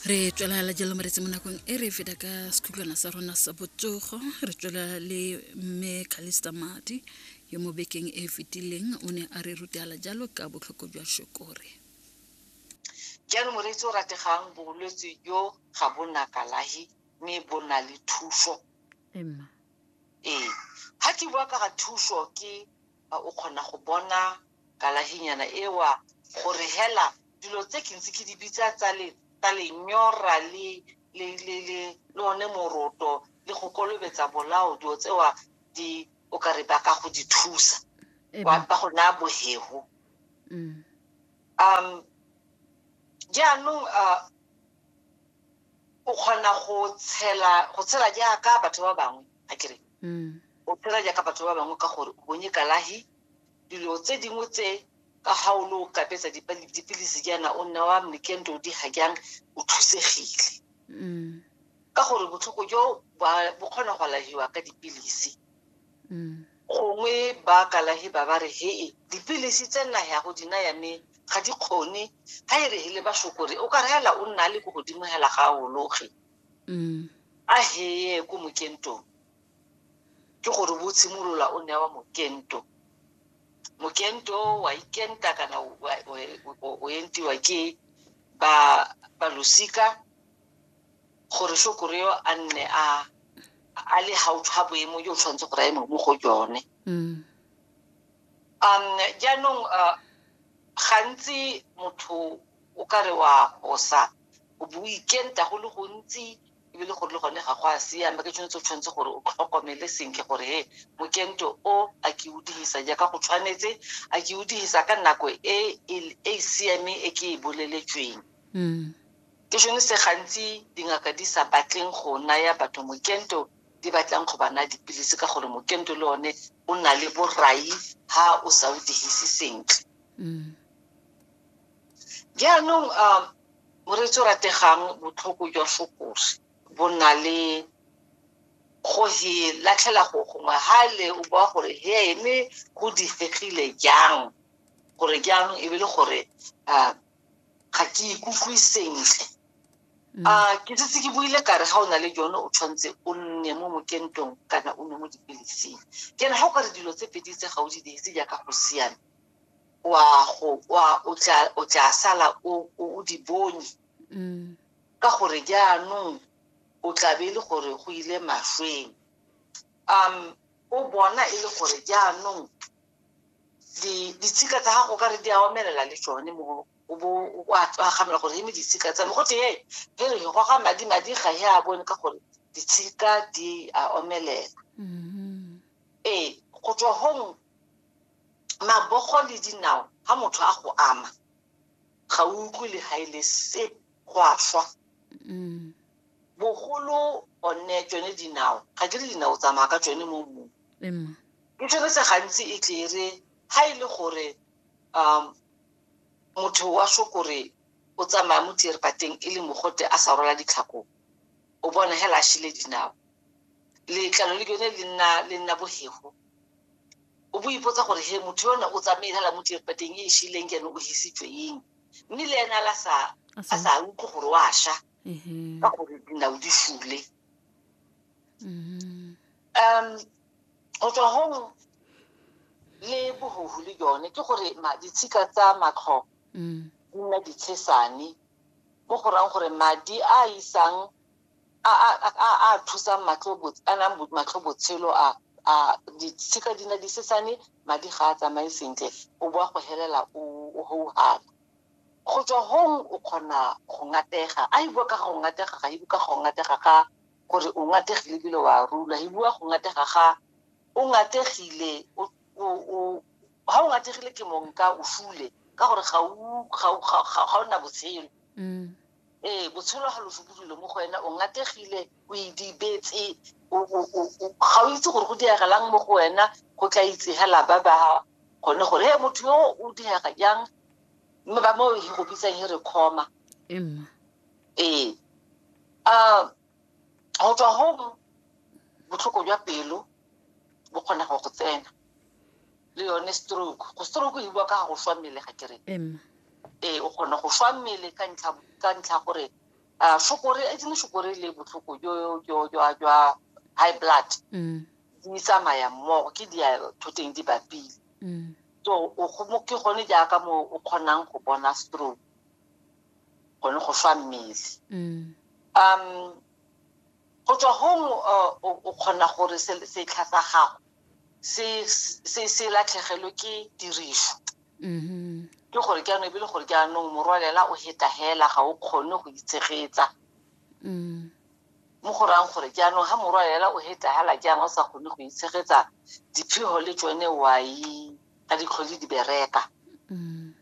re tswela la jalo moretsi mo nakong e re feta ka sekhutlwana sa rona sa botsogo re tswela le mme calista madi yo mo bekeng e fetileng o ne a re rutela jalo ka botlhoko jwa shokore jalo moretsi o rategang bolwetse jo ga bona kalahi mme bo na le thuso ee ga ke bua ka ga thuso ke A o kgona go bona kalahinyana e wa gore hela dilo tse ke ntse ke di bitsa tsa le tsa lenyora le le le le le one moroto le go kolobetsa bolao dilo tsewa di o ka re ba ka go di thusa Ee, ba ba go naya bohego mm. um jaanong uh, o kgona go tshela go tshela jaaka batho ba bangwe a kere mm. o phela jaaka batho ba bangwe ka gore o bonye kalahi dilo tse dingwe tse ka ga o le o kapetsa dipilisi jaana o nna wa mekendo di ga jang o thusegile mm. ka gore botlhoko jo bo kgona go alahiwa ka dipilisi mm. gongwe ba kalahi ba ba re hee dipilisi tse nna ya go dina ya me ga di kgone ga e re hele ba shokore o ka reela o nna le ko godimo hela ga a ologe mm. a heye ko mokentong ke gore bo tshimolola o newa mokento mokento wa ikenta kana o entiwa ke ba ba losika gore shokoreo a nne a a le gaufi ga boemo jo o tshwanetse gore a eme mo go jone mm. um jaanong uh, gantsi motho o ka re wa gosa o bo o ikenta go le gontsi ebile gore le gone ga go a siama ke tshwanetse o tshwanetse gore o tlhokomele sentle gore he mokento o a ke o dirisa jaaka go tshwanetse a ke o dirisa ka nako e e, e siameng e ke e boleletsweng mm. ke sone se gantsi dingaka di sa batleng go naya batho mokento di batlang go bana dipilisi ka gore mokento le one o na le borai ha o sa o dirise sentle mm. jaanong um moreetsi o rategang botlhoko jwa fokose bo na le go he latlhela go gongwe ha le o bua gore he ene go difegile jang gore jaanong e be le gore um ga ke ikutlwe sentle Mm. a ah, ke setse ke buile kare ga o na le jone o tshwanetse o nne mo mokentong kana o nne mo dipilising ke ne ga o kare dilo tse pedi tse ga o di dirise jaaka go siame wa go wa o tla o tla sala o o o di bonye Mm. ka gore jaanong o tlabe e le gore go ile mašweng um o bona e le gore jaanong di- ditshika tsa gago ka re di a omelela le tsone mo o bo o a tswagamela gore eme ditshika tsa me go tee re re go ga madi madi ga e a bone ka gore ditshika di a omelela Mm. ee go tswa gong mabogo le dinao ha motho a go ama ga o utlwe le ga e le se go a swa mm. bogolo one tsone dinao ga ke re dinao tsamaya ka tsone mo mmung ke tsone se gantsi e tlere ga e le gore um motho wa sokore o tsamaya mo tierpateng e le mogote a sa rola ditlhako o bona hela a shile dinao letlalo le yone le nna bogego o bo ipotsa gore he motho yone o tsamaile la mo dierbadeng e e shileng ke ene o hisitswe eng mme le ene a sa utlwe gore wa sha mm-hmm. ka gore dinao di fule mm-hmm. um go tswa gong le bogogo le yone ke gore ditshika tsa matlho mm. di nna ditshesane mo go rang gore madi a isang a a a a thusang matlho botse a nang bo- matlho botshelo a a ditshika di na di sesane madi ga a tsamaye sentle o boa go helela o o houhara go tswa hong o kgona go ngatega a e bua ka ga go ngatega ga e bua ka ga go ngatega ga gore o ngategile ebile wa rula e bua go ngatega ga o ngategile o o- o- ga o ngategile ke mong ka o fule ka gore ga o- ga o- ga- ga- ga o na botshelo Mm. ee botshelo ga lo fokodile mo go wena o ngategile o idibetse ga o itse gore go diregelang mo go wena go tla itsegela ba ba gone gore he motho yo o direga jang mme ba mo e go bitsang e re khoma ee um go tswa go botlhoko jwa pelo bo kgona go go tsena le yone stroke go stroke e bua ka go swa mmele ga kere ee o kgona go swa mmele ka ntlha gore shokore e tsene shokore le botlhoko jwa high blood mm. di tsamaya mmogo ke di thoteng di bapile mm. so ke gone jaaka mo o kgonang go bona stroke gone go fa mmele mm. um go tswa gong o kgona gore setlha sa gago se latlhegelwe ke tiriso mm-hmm. ke gore ke anong ebile gore ke anong morwalela o heta hela ga o kgone go itshegetsa mm. mo go rang gore ke anong ga morwalela o heta hela ke anong o sa kgone go itshegetsa diphego le tsone wai ka ditlhole di bereka mm.